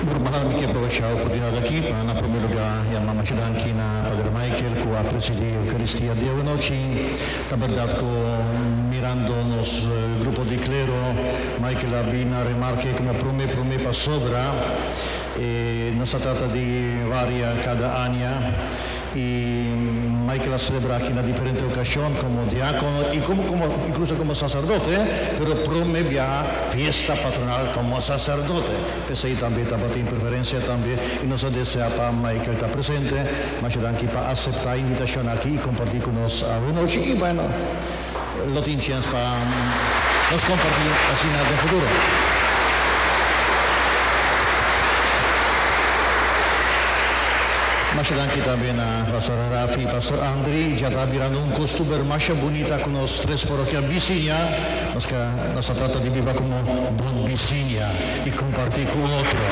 Gurmá, mi ke aprovecha oportunidad aki pa na promé lugá ya mamashi danki na Pader Michael ku a presidí Eukaristía di awanochi. Ta bèrdat ku mirando nos grupo di klero, Michael a bin a remarka ei komo promé promé pasobra nos ta trata di varia kada aña. Y Michael a celebra aki na diferente ocasion como diacono y como como incluso como sacerdote, pero prome biaha fiesta patronal como sacerdote. P'esey tambe tabatin preferencia tambe y nos a desea pa Michael ta presente. Masha danki pa acepta invitacion aki y comparti cu nos awe nochi y bueno. Lo tin chens pa nos comparti asina den futuro. Masha danki tambe na Pastor Rafi y Pastor Andry. Dja ta birando un costuber masha bunita cu nos tres porokia bisiña. Nos ta trata di biba como bon bisiña. i kompartí ku un otro.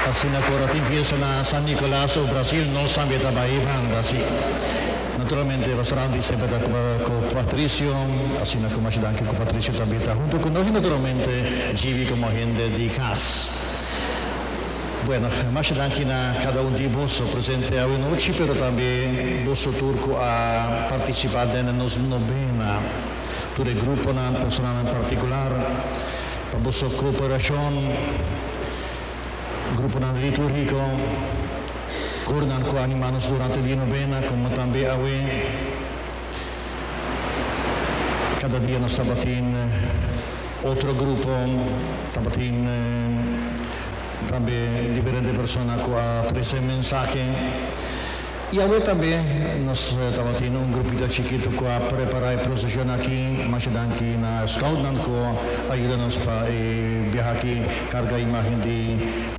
Asina ku ora tin piensa na San Nicolas of Brasil no san be ta bai e banda así. Naturalmente Rosarandi semper ta ku Patricio, asina ku Masha Danki ku Patricio ta bita huntu ku nos i naturalmente Jivi komo hende di kas. Bueno, masha danki na kada un di boso presente awe nochi, pero tambe boso tur ku a partisipá den e nos nobena, tur e gruponan, personanan partikular, pa boso kooperashon, gruponan litúrgiko, kornan ku a animá nos durante di nobena, komo tambe awe. Kada dia nos tabatin otro grupo, tabatin. tambe diferente persona cu a trece mensahe. Y awe tambe nos tabatin un grupito chikito cu a prepara e procesion aki. Masha danki na scoutnan cu a yuda nos pa e biaha aki carga imagen di.